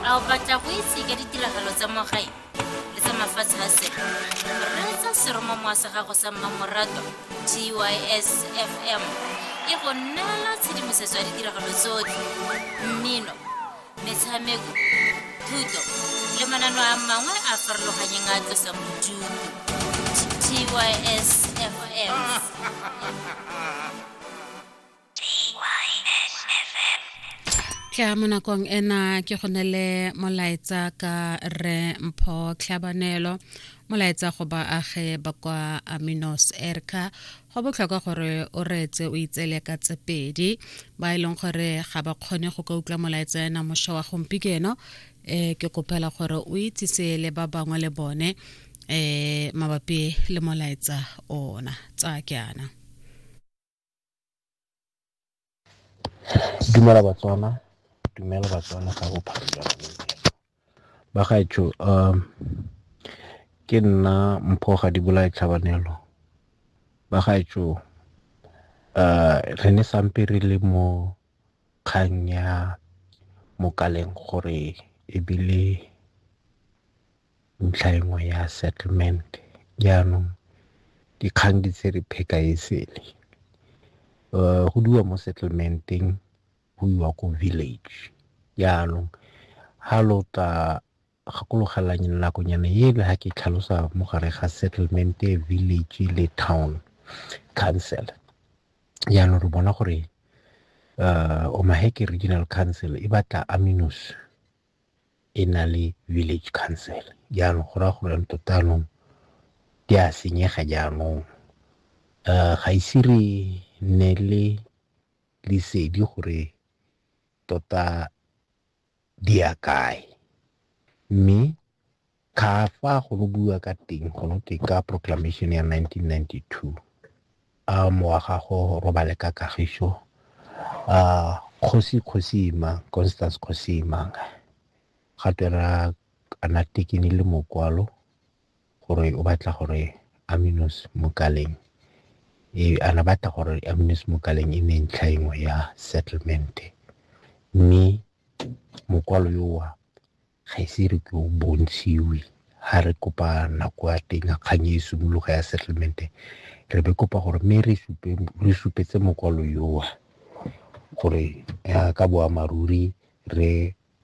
A o batla go itse ka ditiragalo tsa mo gae le tsa mafatshe a sele? Reetsa seromamowa sa gago sa mmamoratwa TYS FM e go neela tshedimosetso ya ditiragalo tsotlhe, mmino, metshameko, thuto le manano a mangwe a a farologanyeng a a tlosang bodutu. TYS FM. tlha mo nakong ena ke go ne le molaetsa ka re mpho tlhabanelo molaetsa go baage ba kwa aminos erka go botlhokwa gore o reetse o itseele ka tse pedi ba e leng gore ga ba kgone go ka utlwa molaetsa ena mošwa wa gompieno um eh, ke kopela gore o itsise le ba bangwe le bone um mabapi le molaetsa ona tsa ke ana Dumela Batswana, dumela Batswana ka bophara jwa bagaetsho ke nna Mpho Gadibolaye Tlhabanelo. Bagaetsho re ne sampe re le mo kgang ya Mokaleng gore ebile ntlha e nngwe ya settlement. Jaanong dikgang di tse re pheka e sele. Go diwa mo settlement-eng go iwa ko village. Jaanong ha lo tla gakologelang nakonyana ele ha ke tlhalosa mo gare ga settlement e village le town council. Jaanong re bona gore Omaheke Regional Council e batla aminous. e na le village council. Jaanong go raya gore tota anong di a senyega jaanong. Um ga ise re nne le lesedi gore tota di ya kae mme Ka fa go no bua ka teng go no teng ka proclamation ya 1992 a moagago robale ka kagiso a kgosi kgosima Constance kgosima ga twera ana tekene le mokwalo gore o batla gore Aminus Mokaleng e ana batla gore Aminus Mokaleng e ne ntlha engwe ya settlement mme mokwalo yowa Ga ise re ke o bontshiwe ha re kopa nako ya teng ya kgang e simologa ya settlement re be kopa gore mme re supe re supetse mokwalo yowa gore ya ka boammaaruri re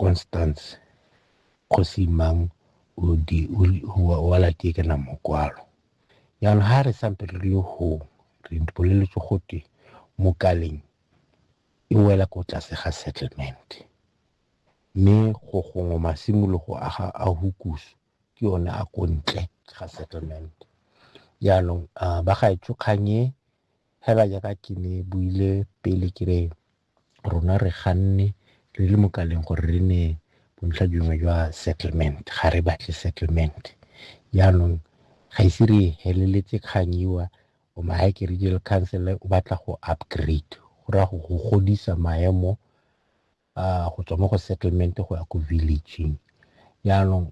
Constance kgosi mang o di wa latie ke na mokwalo jaanong ha re sampe re le go re boleletse gote mo kaleng e wela ko tlase ga settlement Mme go gongwe masimologo a ga a hukusu ke one a ko ntle ga settlement. Jaanong ba gaetsho kgang e fela jaaka ke ne buile pele ke re rona re ganne re le mo kaleng gore re ne bontlha dingwe jwa settlement ga re batle settlement. Jaanong ga ise re heleletse kgang iwa o maake regional council o batla go upgrade go raya go godisa maemo go tswa mo go settlement go ya ko village-ing jaanong .